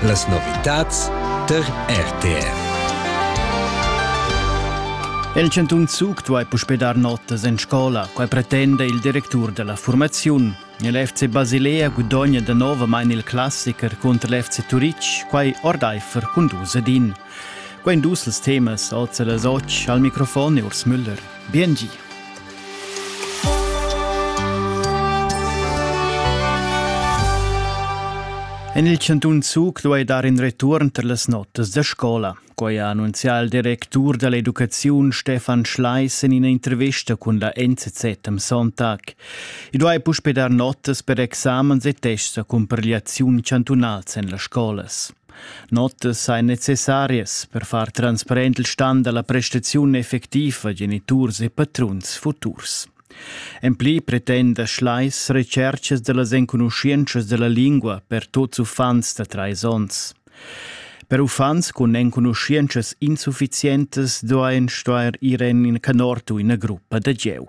Las novitads tar RTR. El Chantun Zug duai puspè dar notas en scola. Quai pretenda il directur della formaziun. L'FC Basilea gudogna danovamain il classiker cunter l'FC Turitg, quai ordaifer cun dus edin. Quei ein dus ils temas oz e las otg al microfon e Urs Müller. Bien gi! En il cantun Zug duai dar in return per las notas da scola. Quai ha annunzià il directur da l'educaziun Stefan Schleis en ina intervista cun la NZZ am Sonntag. I duai puspè dar notas per examens e tests a cumpigliaziun chantunals en las scolas. Notas ein necessarias per far transparent il stan dalla prestaziun effectiva geniturs e patruns futurs. En pli pretenda Schleis retschercas dallas enconuschientschas dalla lingua per tuts uffants da treis onns. Per uffants cun enconuschientschas insufficientas duein stuer ir en in canort u ina gruppa da gieu.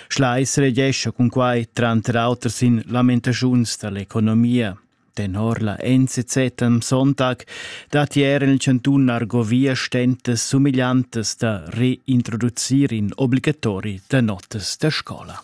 Schleis regescha cun quai tranter auter sin lamentaziuns dall'economia. Tenor la NZZ am Sonntag datti er en il chantun argovia stentas sumigliantas da reintroducir in obligatori da notas da scola.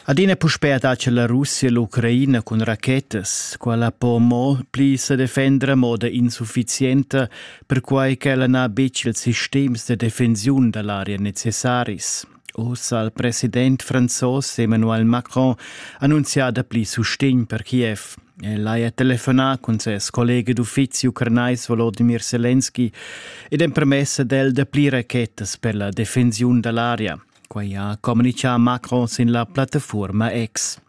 Adina puspè dace la Russia l'Ucraina cun rachetas, quella po mo pli se defender a moda insufficienta, perquai ch'ella n'ha betg ils sistems de defensiun da l'area necessaris. Ussa ha il president franzos Emmanuel Macron annunzià dapli sustegn per Kiev. El haja telefonà cun ses collega d'uffizi ucranais Volodimir Selenski ed empremess ad el dapli rachetas per la defensiun da l'aria. Quai ha communitgà Macron sin la plattafuorma X.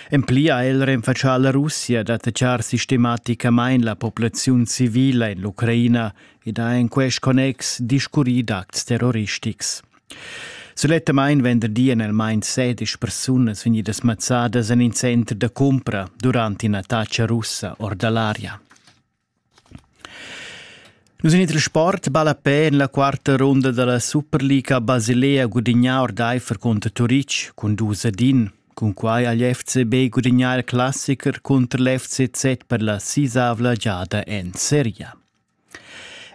En pli ha el renfatschà la Russia d'attachar sistematicamain la populaziun civila en l'Ucraina ed ha en quest connex discurrì d'acts terroristics. Sulettamain venderdi en el main sedisch persunas vegnidas mazzadas en in center da cumpra durant in'attacca russa or da l'aria. Nus in il sport ballapè en la quarta runda dalla Superliga Basilea gudignà ordeifer cunter Turitg cun dus ad in. Cunquai ha l'FCB gudignà il classicher cunter l'FCZ per la sisavla giada en seria.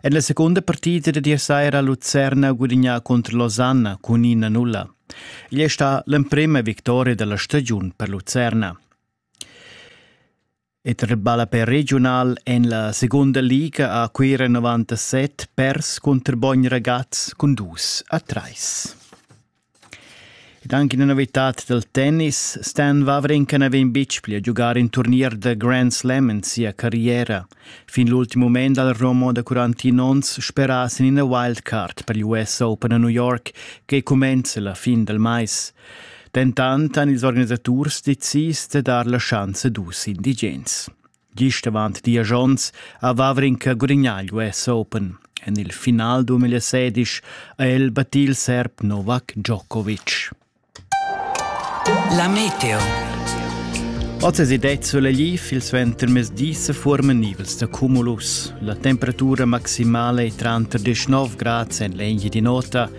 En la secunda partida da saira ha Lucerna gudignà cunter Losanna cun ina nulla. Igl è stà l'emprima victoria dalla stagiun per Lucerna. E tar ballapè regiunal en la segunda liga a Cuira 97 pers cunter Bogn Ragaz cun dus a trais. Ed anche una novità del tennis, Stan Wawrinka n'aveva in bitg pli a giocare in turnier da Grand Slam in sia carriera. Fin l'ultimo moment dal Romo da 41 ons speras in ina wildcard per l'US Open a New York che cumenza la fin del mais. Dentant han ils organisaturs decis da dar la schanza dus indigens. Gist avant diesch onns a Vavrinka Gurignaglio es open. En il final 2016 ha el battì il serb Novak Djokovic. La meteo. Oz è det soleil il suentermezdi se forma nivels da cumulus. La temperatura maximale è tra 19 gradi en l'eglia di nota